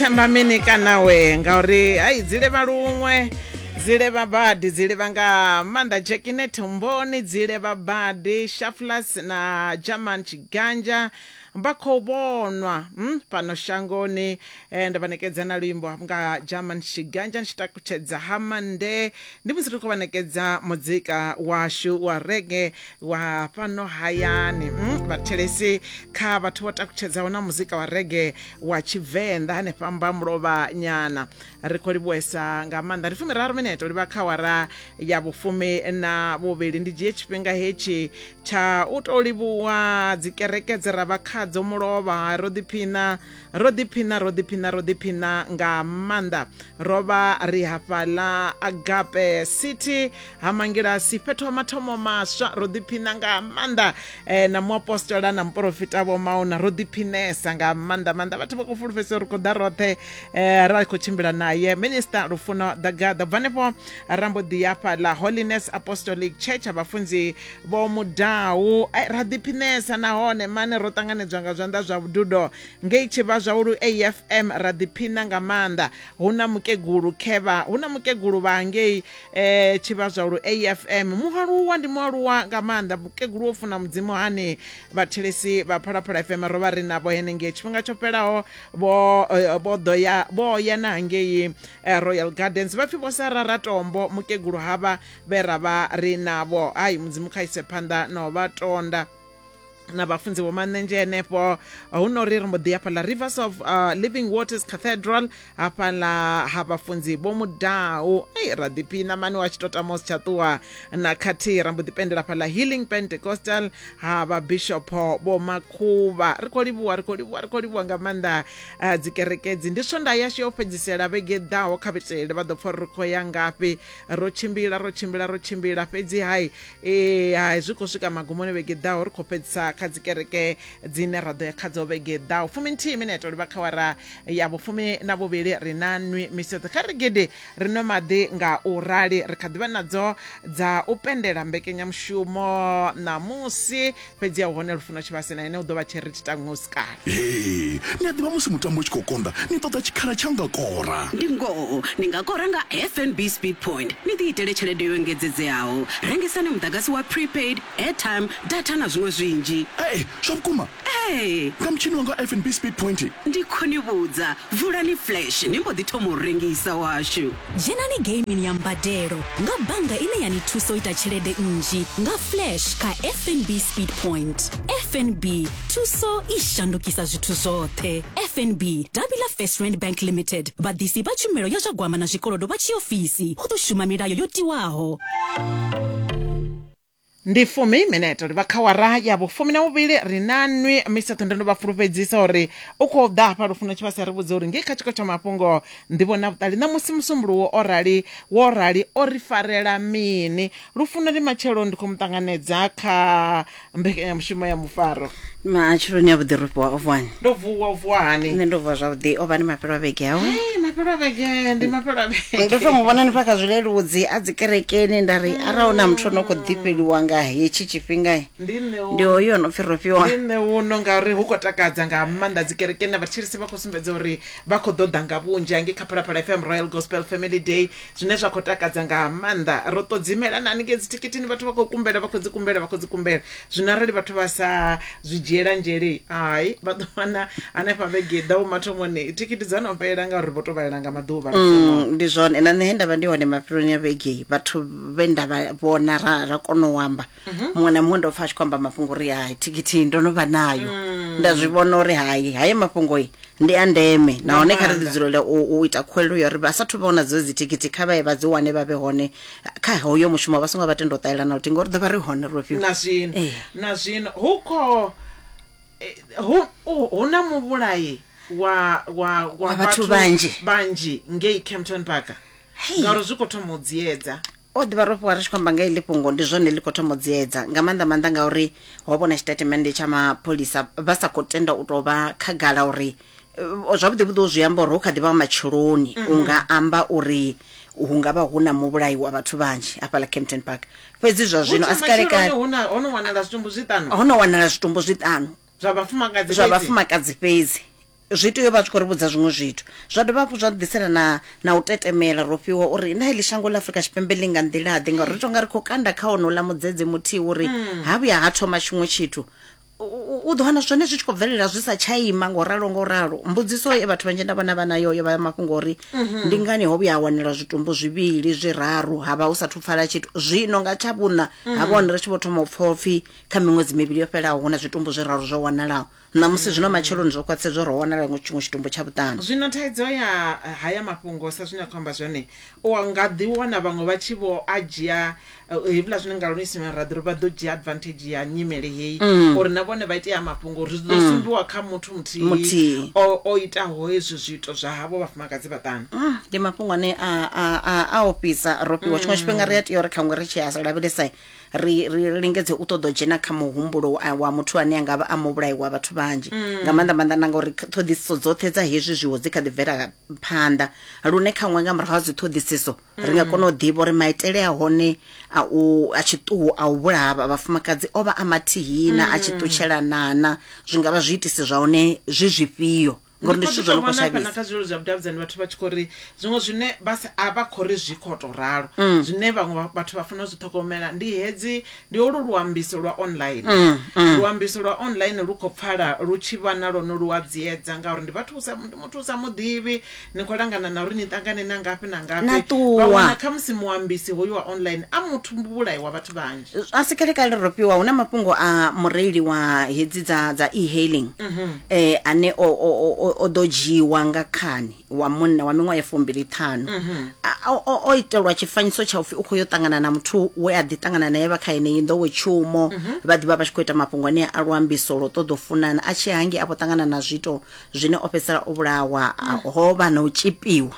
themba mini kana we ngauri hayi dzi levha luṅwe dzi levha badi dzi levha nga maanḓa jekine thumboni dzi levha badi shaflas na german tshiganja vha khou vhonwa mm, fhano shangoni eh, nda vha nekedza na luimbo hafhu nga german tshiganja tshi takutshedza ha mande ndi musi ri khou vha nekedza muzika washu wa rege wa fhano hayani mm, vhathelesi kha vhathu vho takutshedzaho na muzika wa rege wa tshivenḓa hanefha mbamulovha nyana ri khou livhuwesa nga maanḓa ndi fumi raru mineto livha kha wara ya vhufumi na vhuvhili ndi dzhie tshifhinga hetshi tsha u tou livhuwa dzikereke dze ra vha khadzo mulovha ro ḓiphina ro ḓiphina ro ḓiphina ro ḓiphina nga maanḓa ro vha ri hafhaḽa agape city ha mangilasi fhethu ha mathomo maswa ro ḓiphina nga maanḓa eh, na muapostola na muporofita vho mauna ro ḓiphinesa nga maanḓa maanḓa vhathu vha khou fulufhedzisa uri khou ḓa roṱhe eh, ra khou tshimbila naye minista lufuno dagaḓa bva hanefho rambo ḓi yafha la holiness apostolic church ha vhafunzi vho mudau eh, ra ḓiphinesa nahone mane ro ṱanganedzwa nga zwanḓa zwa vhududo ngei tshivha zwa ulu afm ra ḓiphina nga maanḓa hu na mukegulu khevha hu na mukegulu vha ngei eh tshivhazwa lu afm mualuwa ndi mualuwa nga maanḓa mukegulu wo funa mudzimu hani vhathelesi vha phalaphala fm ro vha ri navho henengei tshifhinga tsho fhelaho vho eh, vho ḓo ya vho ya na hangei eh, royal gardens vha pfhi vho sarara tombo mukegulu havha vhe ra vha ri navho hayi mudzimu kha ise phanḓa na u vha tonda na vhafunzi vho manenzhe henefho hu no ri ri mbo ḓi hafhaḽa rivers of uh, living waters cathedral hafhaḽa ha vhafunzi vho mudau ei ra ḓiphina mani wa tshi to tama u si tsha ṱuwa na khathihi ra mbo ḓi pendela hafhaḽa healing pentecostal ha vhabishopo vho makhuvha ri khou livhuwa ri khou livhuwa ri khou livhuwa nga maanḓa uh, dzikerekedzi ndi swonda yashu ya u fhedzisela vhege ḓaho kha vhitelele vha ḓo pfha uri ri khou ya ngafhi ro tshimbila ro tshimbila ro tshimbila fhedzi hai ee hai zwi khou swika magumoni vhege ḓaho ri khou fhedzisa kha dzikereke dzine ra ḓo ya kha dzo vhege ḓaho fumi nthihi mineto livha kha wara ya vhufumi na vhuvhili ri na nwi miseṱo kha ri gidi ri nwe maḓi nga u rali ri kha ḓivha nadzo dza u pendela mbekenyamushumo ṋamusi fhedzi a u hone lufuno tshivhase na ene u ḓo vha tshiri thi tango si kale ee ni a ḓivha musi mutambo u tshi khou konḓa ni ṱoḓa tshikhala tsha nga kora ndi ngoho ni nga kora nga fnb speed point ni ḓi itele tshelede yo engedzedzeaho rengisani muḓagasi wa prepaid airtime data na zwiṅwe zwinzhi ee zwa vhukuma ee nga mutshini wanga fnb speed point ndi khou ni vhudza vulani flash ni mbo ḓi thoma u rengisa washu Dzhenani geimini ya mbadelo nga bannga ine ya ni thusa u ita tshelede nnzhi nga Flash kha FNB Speed Point. FNB, thuso i shandukisa zwithu zwoṱhe. FNB, davhi ḽa First Rand Bank Limited, vhaḓisi vha tshumelo ya zwa gwama na zwikolodo vha tshiofisi, hu ḓo shuma milayo yo tiwaho. ndi fumi minete uri vha kha wara ya vhufumi na muvhili ri na nwi misa ṱhondo ndo vha fulufhedzisa uri u khou ḓa hafha lufuno tshi vha sa ri vhudze uri ngei kha tshiko tsha mafhungo ndivho na vhuṱali ṋamusi musumbuluwo o rali wo rali o ri farela mini lufuno ndi matshelo ndi khou mu ṱanganedza kha mbekanyamushumo ya mufaro matsheloni a vhuḓi ro fhiwa o vuwani ndo vuwa u vuwa hani nṋe ndo vuwa zwavhuḓi o vha ni mafhelo a vhege awe Hey, mafhelo a vhege ndi mafhelo a vhege ndo to mu vhona ni fha kha zwileludzi a dzikerekeni nda ri arali na muthu ono khou ḓifheliwa nga hetshi tshifhinga ndi nṋe u- ndi hoyu o no pfi ro fhiwa ndi nṋe uno ngauri hu khou takadza nga maanḓa dzikerekeni na vhatshilisi vha khou sumbedza uri vha khou ḓoḓa nga vhunzhi hange kha phalaphala fm royal gospel family day zwine zwa khou takadza nga maanḓa ro ṱodzimela na haningei dzithikithini vhathu vha khou kumbela vha khou dzi kumbela vha khou dzi kumbela zwino arali vhathu vha sa zwi dzhiela nzhele hai vha ḓo wana hanefha vhege ḓaho mathomoni thikhithi dza no fhelela ngauri vho to vhalela nga maḓuvha Mm, ndi zwone na nṋe he ndavha ndi hone mafheloni a vhegei vhathu vhe nda vha vhona ra ra kona u amba muṅwe na muṅwe ndo pfa a tshi khou amba mafhungo uri hai thikithi ndo no vha nayo nda zwi vhona uri hai haye mafhungo i ndi a ndeme nahone kha ri ḓi dzulele u, u ita khuwelelo ya uri vha sathu vha wana dzo dzi thikithi kha vhaye vha dzi wane vha vhe hone kha hoyo mushumo vha songo vha tenda u ṱalelana luthihi ngori ḓo vha ri hone ro fhiwa na zwino Eh. na zwino hu kho eh, hu hu- hu na muvhulayi wa wa Wa vhathu vhanzhi. vhanzhi ngei Kempton Park Hey. ngauri zwi kho thoma u dziedza O ḓi vha rofhiwa ri tshi khou amba nga heḽi fhungo ndi zwone ḽi khou thoma u dziedza nga maanḓa maanḓa ngauri ho vhona tshitatimende tsha mapholisa vha sa khou tenda u tou vha khagala uri eh, zwavhuḓi vhuḓi u zwi amba uri hu kha ḓi vha wa matsheloni mm -hmm. u nga amba uri hu nga vha hu na muvhulayi wa vhathu vhanzhi hafhaḽa campton park fhedzi zwa zwino a si kalekale ho no wanala zwitumbu zwiṱanu zwa vhafumakadzi zwa vhafumakadzi fhedzi zwi tea u vha tshi khou ri vhudza zwiṅwe zwithu zwa dovha hafhu zwa ḓisela na na u tetemela ro fhiwa uri na heḽi shango ḽa afurika tshipembe ḽi nga nḓilaḓe ngauri ri tonga ri khou kanda kha onola mudzedze muthihi uri hmm. ha vhuya ha thoma tshiṅwe tshithu u ḓo wana zwone zwi tshi khou bvelela zwi sa tsha ima ngo ralo ngo ralo mbudziso e vhathu vhanzhi nda vhona vha nayo yo vha mafhungo uri mhm. ndi ngani ho vhuya ha wanela zwitumbu zwivhili zwiraru ha vha hu sathu pfala tshithu zwino nga tsha vhuṋa ha mhm. vhone ri tshi vho thoma u pfha upfhi kha miṅwedzi mivhili yo fhelaho hu na zwitumbu zwiraru zwo wanalaho ṋamusi zwino matsheloni zwo khwaṱhisa zwo ro wanala iṅwe tshiṅwe tshitumbu tsha vhuṱanu zwino thaidzo ya eh, haya mafhungo sa zwine a khou amba zwone u nga ḓi wana vhaṅwe vha tshi vho a dzhia eh, hevhula zwine nga luisimela ra ḓi ri vha ḓo dzhia advantage ya nyimele heyi uri na vhone vha ite ya mafhungo uri zwi ḓo sumbiwa kha muthu muthihi Muthihi. o o itaho hezwi zwiito zwa havho vhafumakadzi vhaṱanu Mm, ndi mafhungo ane a- a a- a ofhisa ro fhiwa tshiṅwe tshifhinga ri a tea uri khaṅwe ri tshi a lavhelesa ri ri ri lingedze u ṱoḓa u dzhena kha muhumbulo wa- wa muthu ane a nga vha a muvhulayi wa vhathu vhanzhi nga maanḓa maanḓa na ngauri kha- ṱhoḓisiso dzoṱhe dza hezwi zwiwo dzi kha ḓi bvela phanḓa lune khaṅwe nga murahu ha dzi ṱhoḓisiso ri nga kona u ḓivha uri maitele a hone a u a tshiṱuhu a u vhulaha vha- vhafumakadzi o vha a mathihina a tshi ṱutshelanana zwi nga vha zwiitisi zwa hone zwi zwifhio ngori ndi zwithu zwo no khou shavhisa na kha zwilelo zwa vhudavhidzani vhathu vha tshi khou ri zwiṅwe zwine vha sa- a vha khou ri zwi khou tou ralo mm. zwine vhaṅwe vha- vhathu vha fanela u zwi ṱhogomela ndi hedzi ndi olu luambiso lwa online mm, mm. luambiso lwa online lu khou pfala lu tshi vha na lwone lu a dziedza ngauri ndi vhathu u sa- ndi muthu u sa muḓivhi ni khou langana na uri ni ṱangane na ngafhi na ngafhi Na ṱuwa. vha wana khamusi muambisi hoyu wa online a muthu vhulayi wa vhathu vhanzhi a si kalekale ro fhiwa hu na mafhungo a mureili wa hedzi dza dza e-hailing eh ane o o o- o o ḓo dzhiiwa nga khani wa munna wa miṅwaha ya fumbili ṱhanu A- o- o o itelwa tshifanyiso tsha upfhi u khou yo ṱangana na muthu we a ḓi ṱangana naye vha kha yeneyi nḓowetshumo vha ḓivha vha tshi khou ita mafhungo ane a luambiso lwo ṱoḓa u funana a tshi hangi a vho ṱangana na zwiito zwine o fhedzisela o vhulawa a- ho vha na u tshipiwa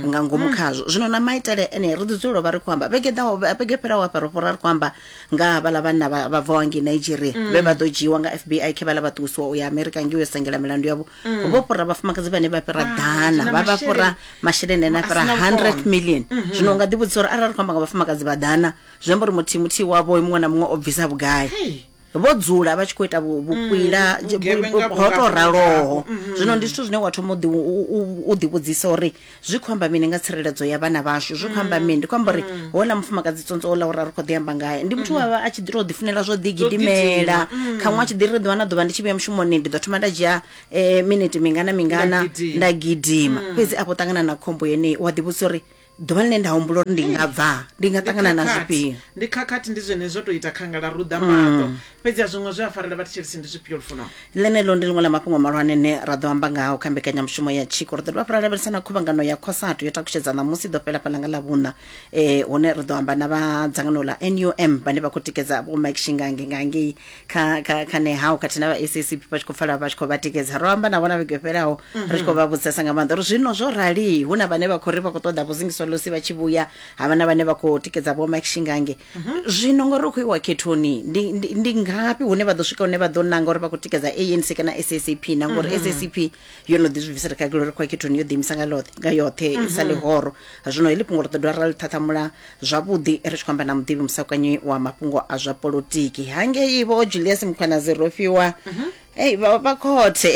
nga ngomu khazwo zwino na maitele ene ri ḓi dzulela u vha ri khou amba vhege ḓaho vhege fhiraho hafha ro fhora ri khou amba nga ha vhaḽa vhanna vha vha bvaho ngei nigeria vhe vha ḓo dzhiiwa nga fbi khe vhaḽa vha ṱuwisiwa u ya amerika ngei yo sengela milandu yavho vho fhura vhafumakadzi vhane vha fhira Wow, ḓana na vha vha fhura masheleni. masheleni ane a A fhira sina 100 vhukono. million zwino u nga ḓivhudzisa uri arali ri khou amba nga vhafumakadzi vha ḓana zwi amba uri muthihi muthihi wavho muṅwe na muṅwe o bvisa vhugai Hey. vho dzula vha tshi khou ita vhukwila mm, ho to raloho mm-hmm. zwino ndi zwithu zwine wa thoma u ḓivhudzisa uri zwi khou amba mini nga tsireledzo ya vhana vhashu zwi khou amba mm. mini ndi khou amba uri mm. houḽa mufumakadzi tsontswa ola uri a ri khou ḓi amba ngae ndi muthu wavha a tshi ḓi to ḓifunela zwo ḓigidimela kha ṅwa tshi ḓi ri ḓuvha na ḓuvha ndi tshi vhuya mushumoni ndi ḓo thoma nda dzhia eh, miniti mingana mingana nda gidima fhedzi afho ṱangana na khombo yeneyi wa ḓivhudzisa uri ḓuvha ḽine nda humbula uri ndi nga bva ndi nga ṱangana na zwifhio ndi khakhathi ndi zwene zwo tou ita khangala ruḓa mm. maṱo fhedzi a zwiṅwe zwe a farela vha thetshelesi ndi zwifhio lufuno ḽeneḽo ndi ḽiṅwe ḽa mafhungo malwane ne ra ḓo amba ngaho kha mbekanyamushumo ya tshiko ri ḓo dovha fara lavhelesa na khuvhangano ya khosatu yo takutshedza ṋamusi ḓo fhela fhalanga ḽa vhuṋa um hune ri ḓo amba na vha dzangano ḽa num vhane vha khou tikedza vho mike shingange nga ngei kha kha kha nehau khathihi na vha SACP vha tshi khou pfala vha tshi khou vha tikedza ro amba na vhona vhege yo fhelaho ri tshi khou vha vhudzisesa nga maanḓa uri zwino zwo rali hu na vhane vha khou ri vha khou ṱoḓa vho zingiswa losi vha tshi vhuya ha vha na vhane vha khou tikedza vho Mike Shingange zwino ngori ri khou iwa khethoni ndi ndi- ndi ngafhi hune vha ḓo swika hune vha ḓo nanga uri vha khou tikedza ANC kana SACP na ngori SACP yo no ḓi zwi bvisela khagelo ri khwakhethoni yo ḓiimisa nga loṱhe nga yoṱhe i sa ḽihoro zwino heḽi fhungo ri ḓo dovha ra ḽi ṱhaṱhamula zwavhuḓi ri tshi khou amba na muḓivhi musakanyi wa mafhungo a zwa polotiki hangei vho julius mukhwanazi ro fhiwa ei vha vha khothe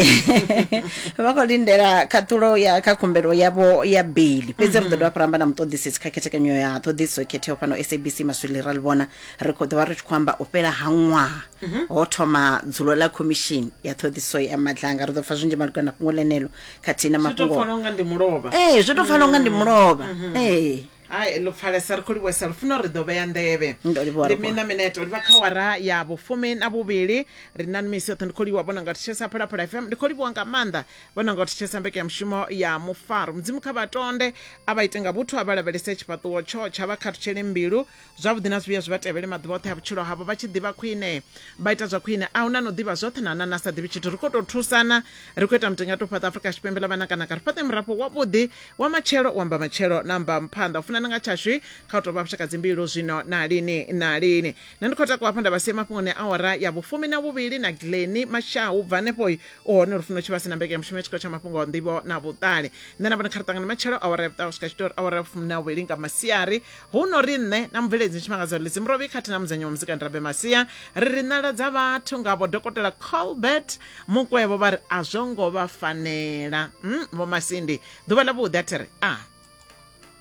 vha khou lindela khaṱhulo ya kha khumbelo yavho ya beli fhedzi ri ḓo dovha fhira amba na muṱoḓisisi kha khethekanyo ya ṱhoḓisiso khetheho fhano sabc maswili ra ḽi vhona Ri khou ḓovha ri tshi khou amba u fhela ha ṅwaha ho thoma dzulo ḽa khomishini ya ṱhoḓisiso ya madlanga. Ri ḓo pfa zwinzhi malugana na fhungo ḽeneḽo khathihi na Zwi to mafhungo. pfala unga ndi mulovha. Ee, zwi tou pfala unga ndi mulovha. Ee. Hai ḽo pfalesa ri khou livhuwesa lufuno ri ḓo vhea nḓevhe Ndo livhuwa ndi lufuno. mina mineto livha kha awara ya vhufumi na vhuvhili ri na misi yoṱhe ndi khou livhuwa vhona nga thetshelesa phalaphala fm ndi khou livhuwa nga maanḓa vhona nga thetshelesa mbekanyamushumo ya mufaro mudzimu kha vhatonde a vha ite nga vhuthu a vha lavhelese tshifhaṱuwo tsho tsha vha khathutshele mbilu zwavhuḓi na zwivhuya zwi vha tevhele maḓuvha oṱhe a vhutshilo havho vha tshi ḓivha khwine vha ita zwa khwine a huna no ḓivha zwoṱhe na nana sa ḓivhi tshithu ri khou tou thusana ri khou ita mutenga to fhaṱa afrika tshipembe ḽa vhanakanaka ri fhaṱe murafho wavhuḓi wa matshelo u amba matshelo na amba mphanḓa u funana nga tshashu kha u tou vha vhushaka dzimbilu zwino na lini na lini nṋe ndi khou takuwa hafho nda vha sie mafhungoni a ora ya vhufumi na vhuvhili na gleni mashau bva hanefho u hone lufuno tshi vha si na mbeke ya mushumo ya tshikolo tsha mafhungo a nḓivho na vhuṱali nṋe na vhone kha ri ṱangane matshelo awara ya vhuṱaho swika tshitori awara ya vhufumi na vhuvhili nga masiari hu no ri nṋe na mubveledzi tshimangadzo lidzi murovi khathihi na mudzenyi wa muzika ndirabe masia ri ri nala dza vhathu ngavho dokotela colbert mukwevho vha ri a zwo ngo vha fanela mm, vho masindi ḓuvha ḽa vhuḓi a thi ri a ah.